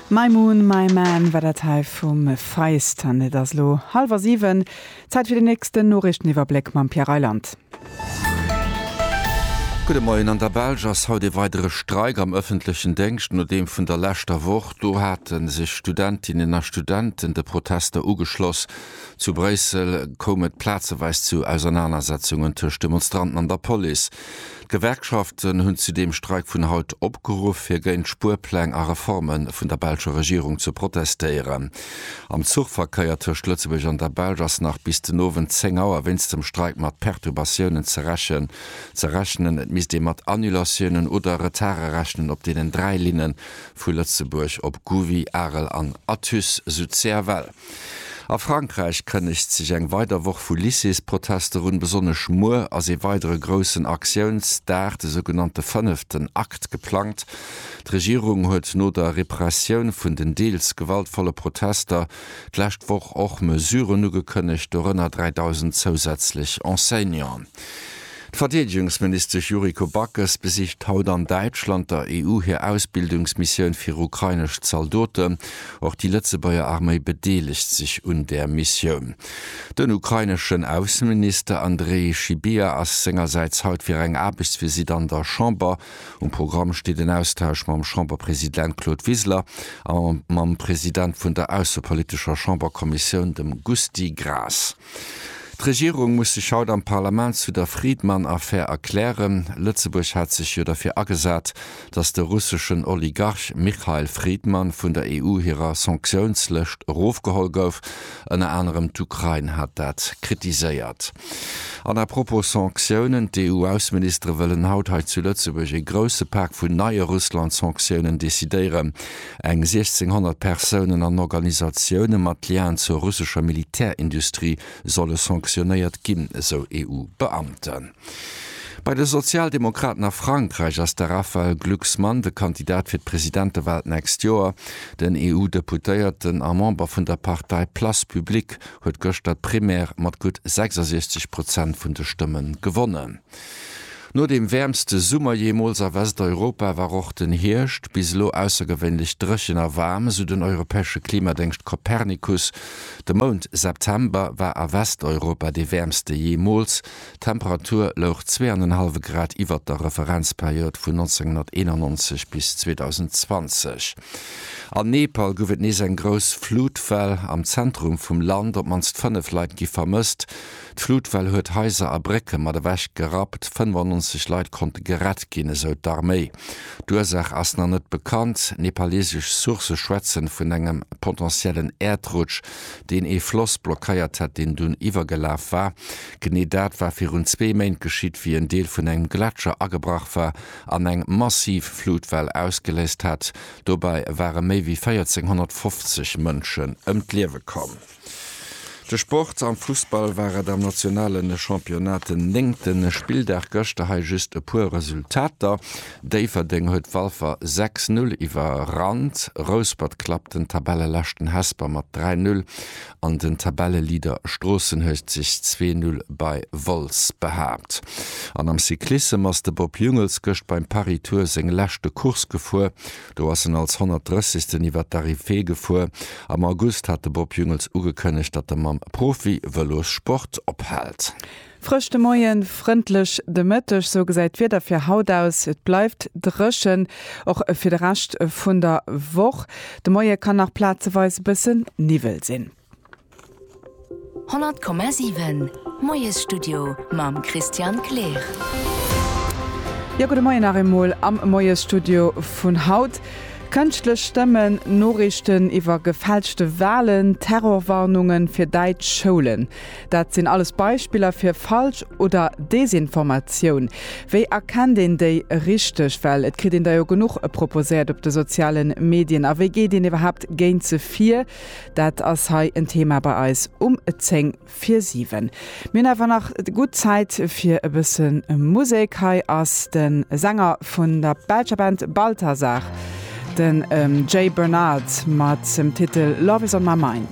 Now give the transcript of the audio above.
My Moon, My Man war dat hei vum Feist an et ass elo hallwer 7, Zäit fir den nächsten Noriichteniwwerbléck mam Pierre Reyland. Gudde Moien, An der Belsch ass haut ee weidere Streik am ëffentlechen Déngscht no deem vun der leschter Woch. Do hate sech Studentinnen a Studenten de Protester ugeschloss. Zu Bréissel koum et plazeweis zu Ausernanersetzungen tëscht Demonstranten an der Police. D'Gewerkschaften hunn zu deem Streik vun haut opgeruff, fir géint d'Spuerpläng a Reforme vun der belscher Regierung ze protestéieren. Am Zuchverkéier tëscht Lëtzebuerg an der Belsch ass nach bis den Owend 10 Auer wéinst dem Streik mat Perturbatiounen ze rechnen. Et misst ee mat Annulatiounen oder Retarde rechnen op deenen dräi Linne vu Lëtzebuerg op Gouvy, Arel an Athus, sou d'CFL. A Frankräich kënnegt sech eng weider Woch vu Lycéesprotester un. Besonnesch muer ass ee weidere groussen Aktiounsdag, de sougenannte fënneften Akt, geplangt. D'Regierung huet no der Repressioun vun den deels gewaltvolle Protester d'lescht Woch och Mesuren ugekënnegt, dorënner 3.000 zousätzlech Enseignanten. D'Verdeedegungsministesch Yuriko Backes besicht haut an Däitschland der EU hir Ausbildungsmissioun fir ukrainesch Zaldoten. Och déi Lëtzebuerger Arméi bedeelegt sech un där Missioun. Den ukraineschen Ausseminister Andrej Sybiha ass sengersäits haut fir eng Aarbechtsvisitt an der Chamber. Um Programm steet en Austausch mam Chamberpresident Claude Wiseler a mam President vun der aussepolitescher Chamberkommissioun, dem Gusty Graas. D'Regierung muss sech haut am Parlament zu der Friedman-Affär erklären. Lëtzebuerg hat sech jo derfir agesat, datt de russeschen Oligarch Michail Friedman vun der EU hirer Sanktiounslëscht erofgeholl gouf. Ënner anerem d'Ukrain hat dat kritiséiert. An à propos Sanktiounen, D'EU-Ausseministere wëllen haut hei zu Lëtzebuerg e grousse Pak vun neie Russland-Sanktiounen decidéieren. Eng 1.600 Persounen an Organisatioune mat Lien zur russescher Militärindustrie solle sanctionéiert ginn, esou EU-Beamten. Bei de Sozialdemokraten a Frankräich ass de Raphaël Glucksmann de Kandidat fir d'Presidentewal d'nächst Joer. Den EU-Deputéierten a Member vun der Partei Place Publique huet gëschter d'Primaire mat gutt 66 Prozent vun de Stëmme gewonnen. No dem wäermste Summer jeemools a Westeuropa war och den Hierscht bis elo aussergewéinlech dréchen a waarm, esou den europäesche Klimadéngscht Copernicus. De Mount September war a Westeuropa dee wäermste jeemools, d'Temperatur louch zwee an en hallwe Grad iwwert der Referenzperiod vun 1991 bis 2020. An Nepal gouf et nees eng grouss Flutwell, am Zentrum vum Land op d'mannst fënnef Leit gi vermësst. D'Flutwell huet Haiser a Brécke mat ewech gerappt, 95 Leit konnte gerett ginn, esou d'Arméi. D'Ursaach ass nach net bekannt. Nepaleesesch Sourcë schwätzen vun engem potentiellen Äerdrutsch, deen ee Floss blockéiert hätt, deen dunn iwwergelaf war. Genee dat war virun zwee Méint geschitt, wéi en Deel vun engem Gletscher agebrach war an eng massiv Flutwell ausgeléist hat. Dobäi ware méi wéi 1.450 Mënschen ëm d'Liewe komm. De Sport, Am Fussball war et am nationale Championnat den néngte Spilldag, gëschter hei just e puer Resultater, Déifferdeng huet Walfer 6, 0 iwwerrannt, Rouspert klappt den Tabelleleschten Hesper mat 3, 0 an den Tabelleleader Stroossen huet sech 2, 0 bei Wolz behaapt. An am Cyclissem ass de Bob Jungels gëscht beim Paris-Tour seng leschte Course gefuer, Do ass en als 130. iwwert d'Arrivée gefuer. Am August hat de Bob Jungels ugekënnegt, datt e mam Profi-Vëlossport ophält. Frësch de Moien, frëndlech de Mëtteg, sou gesäit d'Wieder fir haut aus. Et bleift dréchen, och fir de Rescht vun der Woch. De Moie kann nach plazeweis e bësse Niwwel sinn. 100,7 Moiesstudio mam Christian Kleer. Jo, gudde Moien nach eemol am Moiesstudio vun haut. Kënschtlech Stëmmen, Noriichten iwwer gefälschte Walen, Terrorwarnungen fir däitsch Schoulen, dat sinn alles Beispiller fir Falsch oder Desinformatioun. Wéi erkennt een déi richteg, well et kritt een der jo genuch proposéiert op de sozialen Medien, a wéi geet een iwwerhaapt géint se vir? Dat ass hei en Thema bei eis um 10 vir 7. Mir hunn awer nach gutt Zäit fir e bësse Musek. Hei ass de Sänger vun der belscher Band Balthazar, den Jay Bernard, mat dem Titel Love is on my mind.